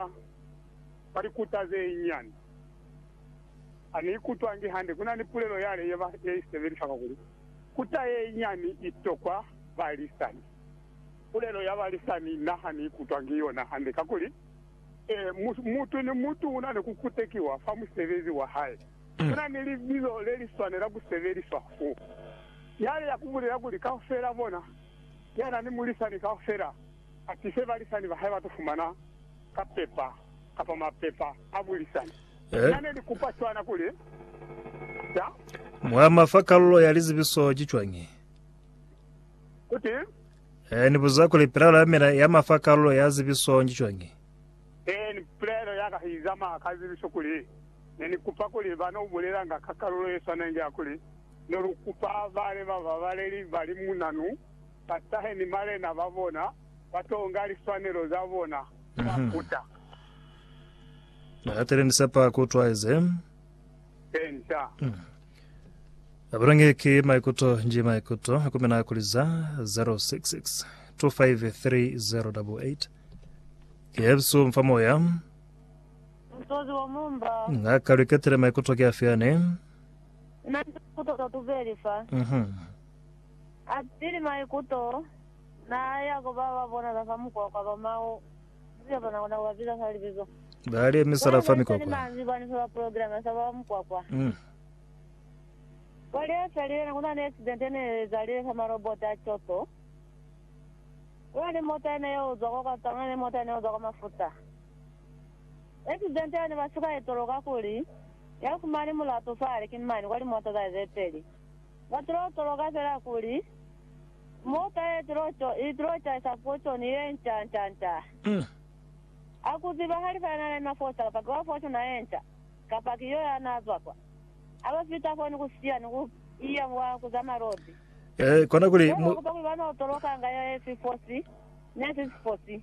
Ka mwa likuta ze nyinyani, ha ni ikutwangi hande. Ku na ni pulelo yale ye ba ye i sebelisa kwa kuli, Kuta ye nyinyani i tokwa balisani. Pulelo ya balisani na ha ni ikutwangi yona hande, kakuli, mu, mutu ni mutu u na ni ku kutekiwa fa musebezi wa hae. Ku na ni libizo le li swanela ku sebeliswa fo, yale ya ku bulela kuli, kaufela bona, ya na ni mulisani kaufela. Ati se balisani ba hae ba to fumana ka pepa kapa mapepa a bulisani. Ku na ne likupa cwana kuli, Sa. Mwa ma fa kalulo ya lizibiso ki cwañi? Ku ti. Ee, ni buza kuli pilaelo ya mina ya ma fa kalulo ya zibiso ki cwañi? Ee, ni pilaelo ya ka i zamaya ka zibiso kuli ne ni kupa kuli ba no bulelanga ka kalulo ye swanengi ya kuli ne lu kupa bale ba babaleli ba limunanu ba tahe ni malena ba bona, ba tonga liswanelo za bona, ba kuta. Na katile ni sepa ku utwa ize. Penta. Na bulenge ki maikuto nji maikuto, ku mina kuli za 066 253088. Ki yebisu mfa moya. Mutozi wa mumba. Na ka luketile maikuto ki afi ane. Na ni maikuto ka tubeli fa. Mhm. Atili maikuto, naa ya ku ba ba bonala fa mukwakwa ba Mao, Mzika bona kona ku ba biza fa libizo. Ba li emisela fa mikwakwa. Bona manzwi bani fa ba programa sa ba mukwakwa? Kwa li efelile, ne kuna ni accident yene ye ezalile fa marobota a Kyoto. Kuna ni mota yene ye uzwa kwa kwa Tanga ni mota yene ye uzwa kwa Mafuta. Accident yene ba suka itoloka kuli ya fumani mulatu fa hali ki mani kwa limota za ye ze peli. Ba tulo tolo kapela kuli, Mota ye tulo to i tulo caisa fotoni ye nca nca nca. A ku ziba ha li sa na lena fo cala paki wa fotona ye nca, kapa ki yo ya na zwa kwa. A ba fita fo ni ku siya ni ku iya mwa ku za malodi. Kona kuli. Ye ba kupa kuli ba no tolokanga ye si fosi, ne si si fosi.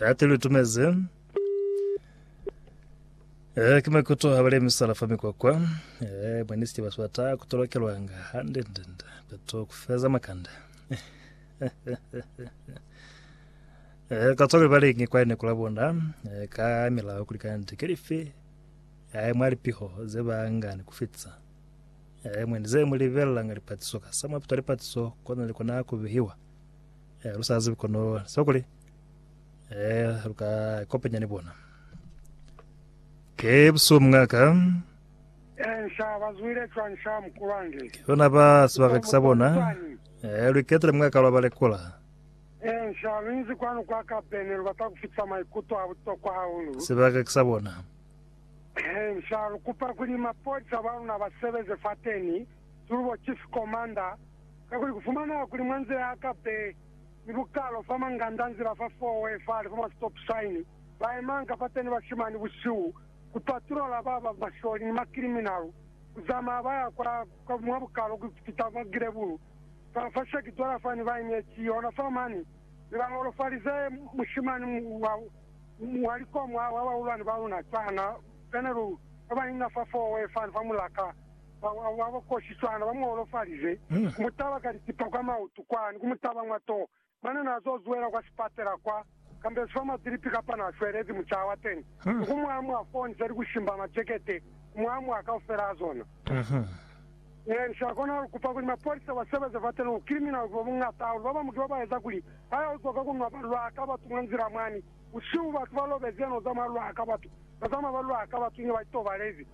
Hati lu tumezi. Eh, ki makuto ha balemi sala fa mikwakwa. Eh, mwa nisiti ba swata ku tolokelwanga hande ndende. Beto ku feza makande. Eh, ka tsole ba lengi kwa ene kula bona. Eh, ka milaho kulikana ndi kelifi. Eh, mwa lipiho ze ba ngani ku fitsa. Eh, mwe ndi ze mu libelanga lipatiso ka sa mwa pita lipatiso kona le kona ku bihiwa. Eh, lu sa zibi kono sa kuli eh lu ka ikopanya ni bona. Ke buso mungaka Eh, nsha bazwile cwa nsha mukulwange. yona ba sebaka kisa bona. Eh, lu iketele mungaka lwa ba lekola. Eh, nsha lu inzi kwanu kwa kabene lu bata kufitisa maikuto a butokwa hahulu. Sebaka kisa bona. Eh, nsha lu kupa kuli mapolisa ba luna ba sebeze fateni, tulubo chief commander, Kakuli kufumana kuli mwa nzila ya ka be ni bukalo fa manganda, nzila fa four way fale fa ma stop sign, ba emanga pateni bashimani busihu ku patrola ba ba masholi ni ma criminal, ku zamaya ba ya kwa, kwa mwa bukalo ku fita mwa gilebulu fa, fa shaki dola fani ba inyeci yona fa mani, mi ba holofalize mushimani wa, wa likomo wa bahulwani ba luna cwana, General, ba ba inga fa four way fani fa mulaka. ba ba kosi cwana, ba mu holofalize, ku mu taba ka litipa kwa mautu kwa, ni ku mu taba mwa toho. Mane n'a z'o zwela kwa sipatela kwa, kambezi fa madilipi kapa n'a shwelezi mucaha wa teñi, ni ku mu amua foo nzha ni ku shimba majekete, ku mu amua kaufela a zona. Ee, ni sa kona ku kupa kuli mapolisa ba sebeze fa teni, bukiliminali ki bo buñata hahulu. Ba bañwi ki ba ba eza kuli ha ya uzwa ka ku nwa ba lwa ka batu mwa nzila mwani busihu, batu ba lobezi, ya no zamaya lwa ka batu, ba zamaya ba lwa ka batu inge ba itobalezi.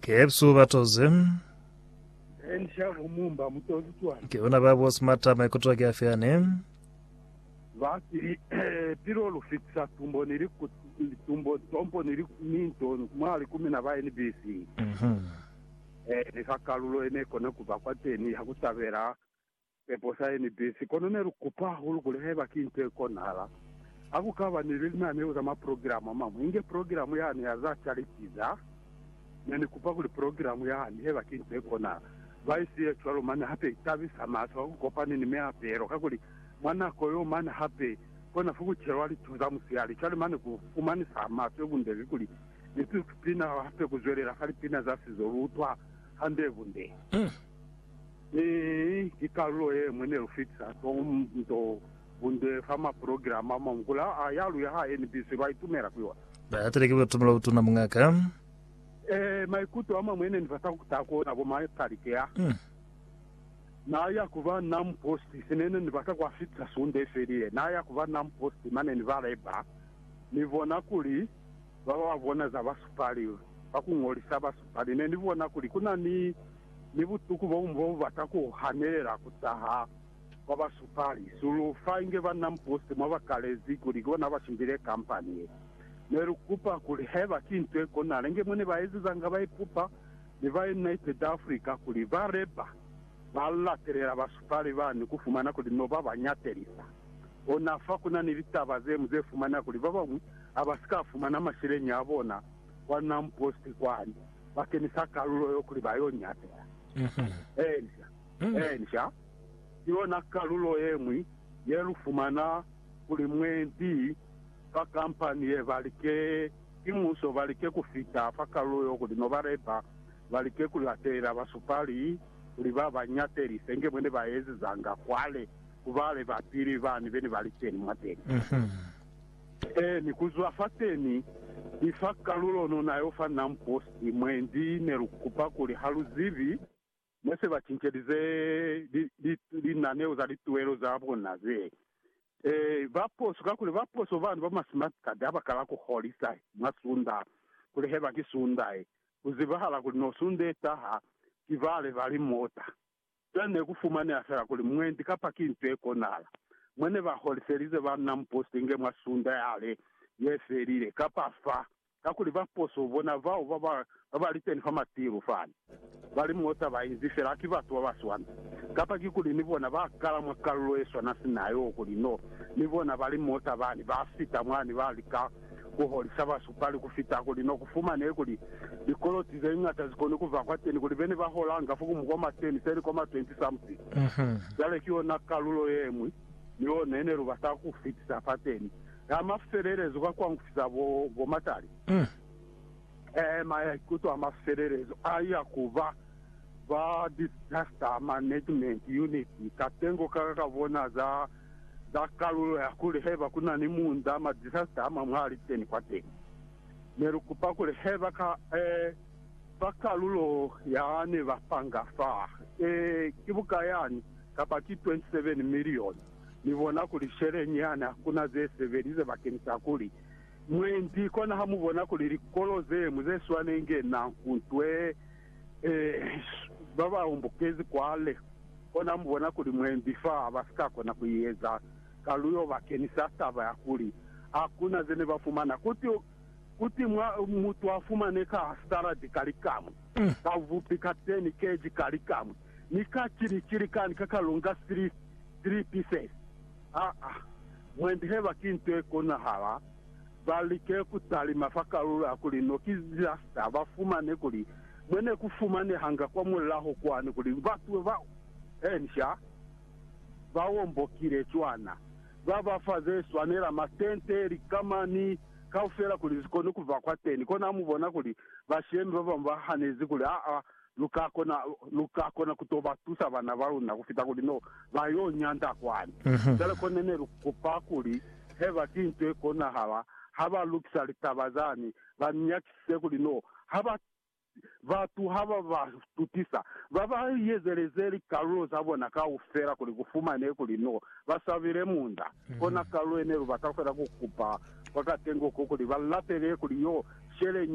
Kepsu batoze. Ke ona ba boss mata maikuto ke afe ane? Basili pilo lu fitisa tumbo ni tumbo tompo ni ni nto mwa li kumi na ba NBC. Mhm. Eh, ni fa kalulo ene kona ku ba kwa teni ha ku tabela Pepo sa ye ni bisi, kono ne lu kupa hahulu kuli haiba ki nto ye konahala, ha ku ka ba ni linaneo za maprogiramu a mañwi, inge progiramu yani ya za chariti za. Ne ni kupa kuli progiramu yani, haiba ki nto ye konahala, ba i siye cwalo mane hape i tabisa mahlo ha ku kopani ni meapelo, kakuli mwa nako yeo mane hape ko na fukucelwa litu za musihali. Cwale mane ku fumanisa maswe ubundezi kuli ni si pina hape ku zwelela fa lipina za sizo lu utwa hande bunde. Mi ki kalulo ye ñwi ne lu fitisa tonto bunde fa maprogirama a mamukula a ya lu ya ha NBC ba itumela ku yona. Ba yatile ki batumelo butuna, Muñaka. Ee, maikuto a mañwi ne ni bata ku taha ku ona bo Michael ki a n'a ya ku ba Nam Post. Se ne ni bata ku a fitisa Sunde ye felile, n'a ya ku ba Nam Post, mane ni ba leba, ni bona kuli, Ba ba bona za basupali ba ku ñolisa basupali ne ni bona kuli ku na ni ni butuku bo buñwi bo bu bata ku hanelela ku taha kwa basupali. Sulu fa inge banna mupusti mwa ba kalezi kuli ki bona ba shimbile kampani ye. Ne lu kupa kuli haiba ki nto ye konahala inge mwa ne ba ezezanga ba ipupa ni ba United Africa kuli ba leba ba latelela basupali ba ni ku fumana kuli no ba ba ñatelisa. Ona fa ku na ni litaba ze ñwi ze fumaneha kuli ba bañwi ha ba si ka fumana masheleñi a bona kwa Nam Post kwani, ba kenisa kalulo yo kuli ba y'o nyakeha. Encia, encia, ki yona kalulo ye ñwi ye lu fumana kuli mwendi fa kampani ye ba like ki muso ba like ku fita fa kalulo yo kuli no ba leba, ba like ku latela basupali kuli ba ba nyatelise inge mwene ba ezezanga kwale ku ba leba pili bani be ne ba li teni mwateni. Ee, ni kuzwa fateni, ni fa kalulo no na yo fa Nam Posti, mwendi ne lu kupa kuli ha lu zibi ne se ba cincelize li, li, linaneo za lituwelo za bona ze. Ee, ba poso, kakuli ba poso bani ba ma smart card ha ba kala ku holisa mwa sunda, kuli heba ki sunda ye, ku zibahala kuli no sunda ye taha, ki bale ba limota. Fela ne ku fumaneha fela kuli mwendi kapa ki nto ye konahala mwa ne ba holiselize banna muposito inge mwa sunda yale ye felile kapa fa, kakuli ba poso bona bao ba ba ba ba liteni fa matilu fani ba li mo taba inzi fela ki batu ba ba swana, kapa ki kuli ni bona ba kala mwa kalulo ye swana sina yo kuli no ni bona ba li mo tabani ba fita mwani ba lika ku holisa basu pali ku fita kuli no ku fumanehe kuli likoloti ze ñata zi koni ku ba kwateni kuli be ne ba holanga fo ku mukoma teni, se likoma 20 something. Cwale ki yona kalulo ye ñwi ni yo ne ne lu bata ku fitisa fateni ya mafelelezo ka ku angufisa bo, bo matali. Ee, maikuto a mafelelezo a ya ku ba ba Disaster Management Unit katengo ka ka bona za za kalulo ya kuli haiba ku na ni munda ma disaster a mañwi a li teni kwateni. Ne lu kupa kuli haiba ka, ee, fa kalulo ya ne ba panga fa, ee, ki bukayani, kapa ki 27 milioni, mi bona kuli sheleñi yani hakuna ze sebelize bakeni sa kuli Mwendi kona ha mubona kuli likolo zeñwi ze swanenge na hutwe ba ba hombokezi kwale. Kona mubona kuli mwendi fa ba si ka kona ku eza kaluyo bakeni sa taba ya kuli hakuna zene ba fumana kuti kuti mwa mutu a fumane ka saladi ka likamwe, ka vupi, ka teni keji ka likamwe, ni ka cili cili kani ka kalunga sili sili pieces. Aa mwendi heba ki nto ye konahala, ba like ku talima fa kalulo ya kuli no ki disaster, ba fumane kuli mwe ne ku fumanehanga kwa mulaho kwani kuli batu ba ensha ba ombokile cwana, ba ba fa ze swanela matente, likama, ni kaufela kuli zi kone ku ba kwateni. Kona ha mu bona kuli bashemi ba bamwi ba hanezi kuli aa lu ka kona, lu ka kona ku to ba tusa bana ba luna ku fita kuli no ba yo nyanda kwani. Cwale kone ne lu kupa kuli heba ki nto ye konahala, ha ba lukisa litaba zani, ba ni nyakisise kuli no ha ba, batu ha ba ba tutisa, ba ba yezeleze likalulo za bona kaufela kuli ku fumanehe kuli no ba swabile munda. Kona kalulo ye ne lu bata fela ku kupa kwa katengo ko kuli ba lapele kuli yo sheleñi.